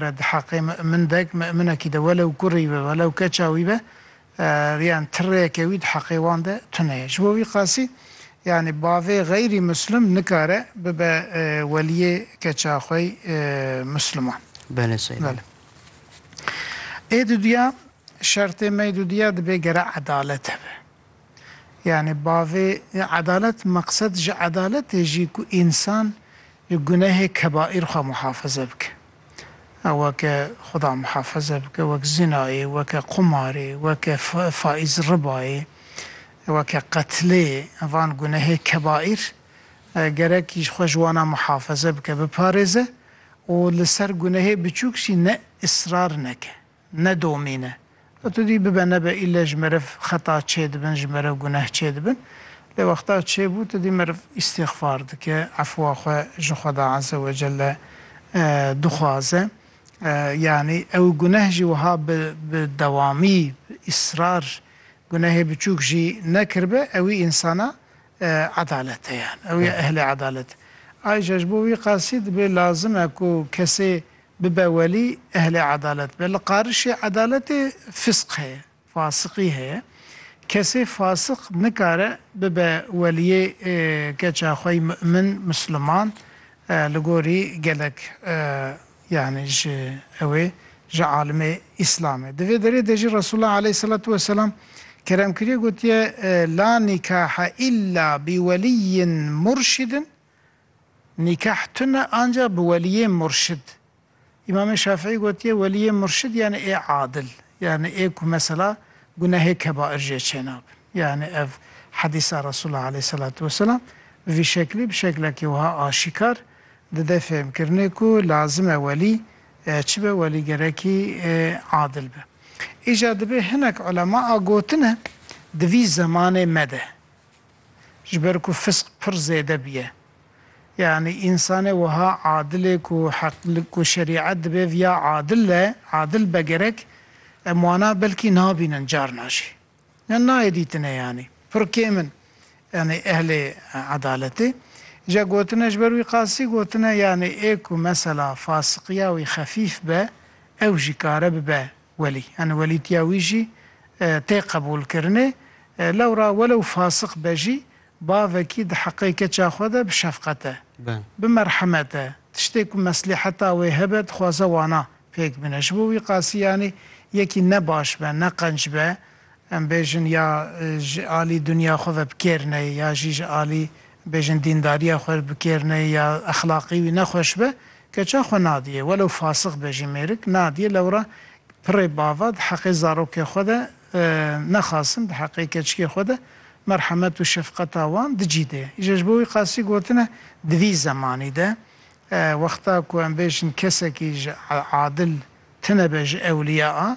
Re di heqê mi'min dek, mi'minekî de welew kurî be, welew keça wî be, yan tirreyeke wî di heqê wan de tune ye. Ji bo wî qasî yanî bavê xeyrî muslim nikare bibe weliyê keça xwe yî musliman. Bele sey. Bele. Ê duduya, şertê me yê duduya dibê gere edalet hebe. Yanî bavê edalet meqsed ji edaletê jî ku însan li gunehê kebaîr xwe muhafize bike. Ew weke xuda muhafize bike, wek zînayê, weke qumarê, weke faîz ribayê, weke qetlê van gunehê kebaîr gerek ji xwe ji wana muhafize bike, biparêze û li ser gunehê biçûk jî ne israr neke. ne domîn e. Lê tu dî bibe nebe île ji meriv xeta çêdibin, ji meriv guneh çêdibin. Lê wexta çêbû tu dî meriv îstîxfar dike, efwa xwe ji Xweda Eze Wecelle dixwaze. Yanî ew guneh jî wiha bi bi dewamî, îsrar gunehê biçûk jî nekiribe ewî însana edalet e yan. Ew ya ehlê edalet e. Ayrîca ji bo wî qasî dibê lazim e ku kesê Bibe welî ehlê edalet be. Li qarişê edaletê fisq heye, fasiqî heye. Kesê fasiq nikare bibe weliyê keça xwe yî mu'min, musliman li gorî gelek yanî ji ew ê ji alimê îslamê. Di vê derê de jî Resûlullah aleyhîsselatu weselam kerem kiriye gotiye, La nîkahe îlla bi weliyyin murşidin Nîkah tune ancax bi weliyê murşid. Îmamê Şafîî gotiye weliyê murşid yanî ê adil, yanî ê ku mesela gunehê kebair jê çênabin. Yanî ev hedîsa Resûla aleyhîsselatu weselam bi vî şeklî bi şeklekî wiha aşîkar dide fêhmkirinê ku lazim e welî çi be, welî gerekî adil be. Îja dibê hinek ulema a gotine di vî zemanê me de Ji ber ku fisq pir zêde bûye. Yanî însanê wiha adilê ku heq ku şerîet dibe viya adil be, adil be gerek, em wana belkî nabînin carna jî. Yan nayê dîtine yanî. Pir kêm in yanî ehlê edaletê. Îja gotine ji ber wî qasî gotine yanî ê ku mesela fasiqiya wî xefîf be ew jî kare bibe Welî, yani welîtiya wî jî tê qebûlkirinê. Lewra welew fasik be jî, bavekî di heqê keça xwe de bi şefqet e, bi merhemet e, tiştê ku meslîheta wê hebe dixwaze wana pêk bine. Ji bo wî qasî yanî yekî ne baş be, ne qenc be, em bêjin ya ji alî dinya xwe ve bi kêr neyê ya jî ji alî bêjin dîndariya xwe bi kêr neyê ya exlaqî wî ne xweş be, Keça xwe nadîyê, welo fasix be jî mêrik, nadîyê lewra pirê bava di heqê zarokê xwe de nexasin, di heqê keçikê xwe de merhemet û şefqeta wan di cî de ye. Ji bo wî qasî gotine di vî zemanî de wexta ku em bêjin kesekî ji adil tune be ji ewlîya a